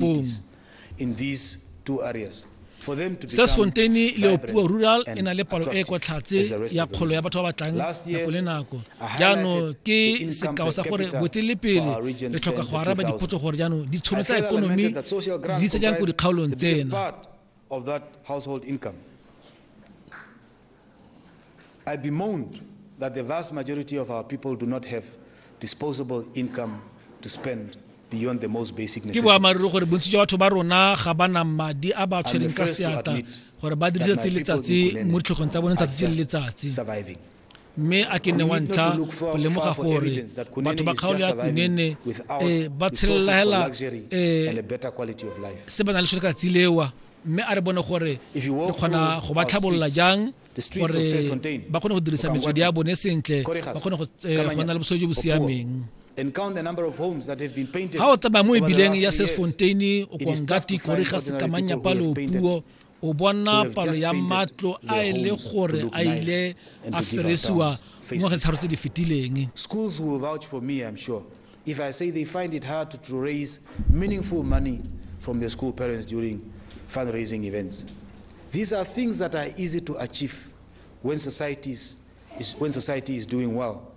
Boom. in these two areas. Sesfonteine Leopuo Rural e na le palo e kwa tlhatse ya kgolo ya batho ba ba tlang nako le nako. Jaanong ke sekao sa gore botelepele re tlhoka go araba dipotso gore jaanong ditšhono tsa ekonomi di se jang ko dikgaolong tsena. of that household income. I bemoaned that the vast majority of our people do not have disposable income to spend beyond the most basic necessities. Ke boamaruri gore bontsi jwa batho ba rona ga ba na madi a ba tshwereng ka seatla gore ba dirise tsatsi le letsatsi mo ditlhogong tsa bone tsatsi le letsatsi. mme a ke nne wa ntlha go lemoga gore batho ba kgaolo ya kunene eh, ba tshelelagela eh, se ba na le sone ka tsilewa mme a re bone gore re kgona go ba tlhabolola jang gore ba kgone go dirisa metswedi ya bone sentle ba kgone go eh, nna le bosodi jo bo siameng and count the number of homes that have been painted. Ha o tsamaya mo ebileng ya Sesfonteini, o Kongati, Koriga, Sekamanya, Palo, Puo, o bona palo ya matlo a e le gore a ile a feresiwa mo ge tsharo tse di fetileng schools will vouch for me i'm sure if i say they find it hard to, to raise meaningful money from the school parents during fundraising events these are things that are easy to achieve when society is, when society is doing well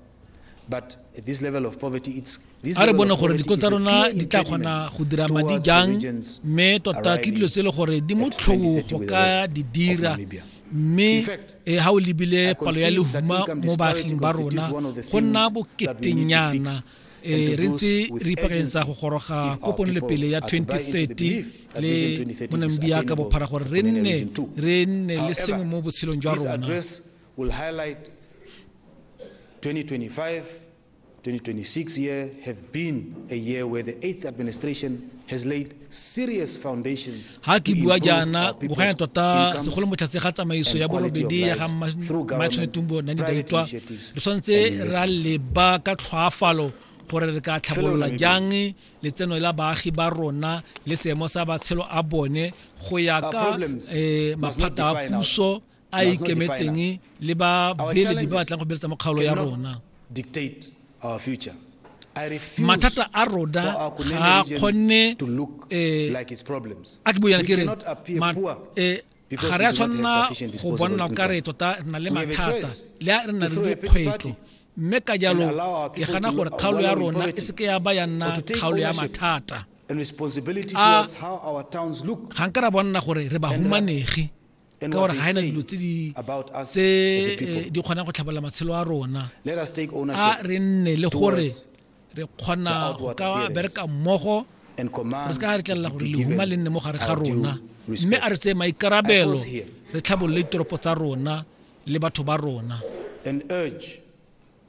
a re bone gore diko tsa rona di tla kgona go dira madi jang mme tota ke dilo tse e le gore di mo tlhong go ka di dira mme ga e, o lebile palo ya lehuma mo baaging ba rona go nna boketenyana um re ntse re ipakeletsa go goroga ko ponelepele ya 2030 le monamibia ka bophara gore re nne re nne le sengwe mo botshelong jwa rona We'll highlight 2025, 2026 year have been a year where the eighth administration has laid serious foundations ha ke bua jaana boganya tota segolo motlhatse ga tsamaiso ya borobedi ya ga matshone tumbo nane daitwa re tshwanetse ra leba ka tlhoafalo gore re ka tlhabolola jang letseno la baagi ba rona le seemo sa batshelo a bone go ya ka eh, maphata a puso a ikemetseng le ba beeledi ba batlang go beletsa mo kgaolo ya rona mathata a rona ga a kgonne eh, a ke boyana ke re eh, ga re a tshwanela go bonela ka re tota na le mathata le a re na le dikgwetlho mme ka jalo ke gana gore kgaolo ya rona e seke ya ba ya nna kgaolo ya mathata a ga nka ra bona gore re ba humanegi ka gore ga ena dilo tse di eh, kgonang go tlhabolola matshelo a rona a re nne le gore re kgona go ka bereka mmogo re se ka re tlelela gore lehuma le nne mo gare ga rona mme a re tseye maikarabelo re tlhabolole ditoropo tsa rona le batho ba rona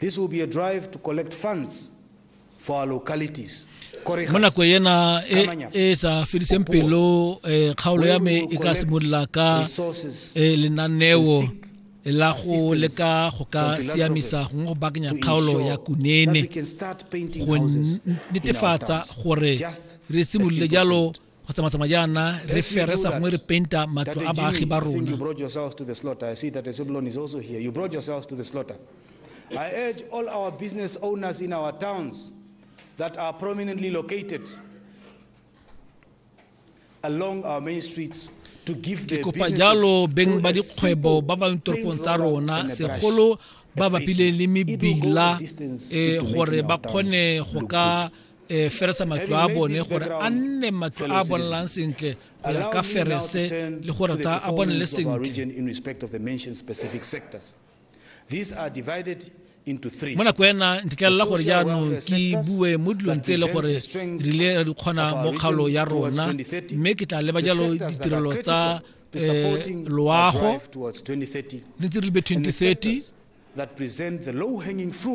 This will be a drive to collect funds for our localities. mo nako ena e, e sa fediseng pelo eh, kgaolo ya me e ka simolola ka eh, lenaneo la go leka go ka siamisa gongwe go bakanya kgaolo ya kunene go netefatsa gore re simolole jalo go tsamatsama jaana re fere sa gongwe re penta matlo a baagi ba rona I urge all our business owners in our towns that are prominently located along our main streets ke kopa jalo beng ba dikgwebo ba ba toropong tsa rona segolo ba bapile le mebila eh, gore ba kgone go ka e feresa matlo a bone gore a nne matlo a bonalang sentle go ya ka ferese le gore ta a bonele sentle mo nako ena ntetlelela gore jaanong ke bue mo dilong tse e le gore re ile ra di kgona mo kgaolo ya rona mme ke tla leba jalo ditirelo tsa eh, loago le ntse re lebe 2030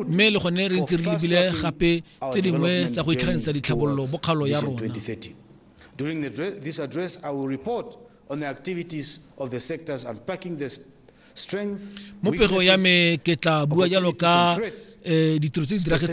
mme le gone re ntse re lebile gape tse dingwe tsa go itlhaganisa ditlhabololo mo kgaolo ya rona During the, this address, I will report on the activities of the sectors unpacking the strength, mo pego ya me ke tla bua jalo ka eh, ditiro tse di diragetseng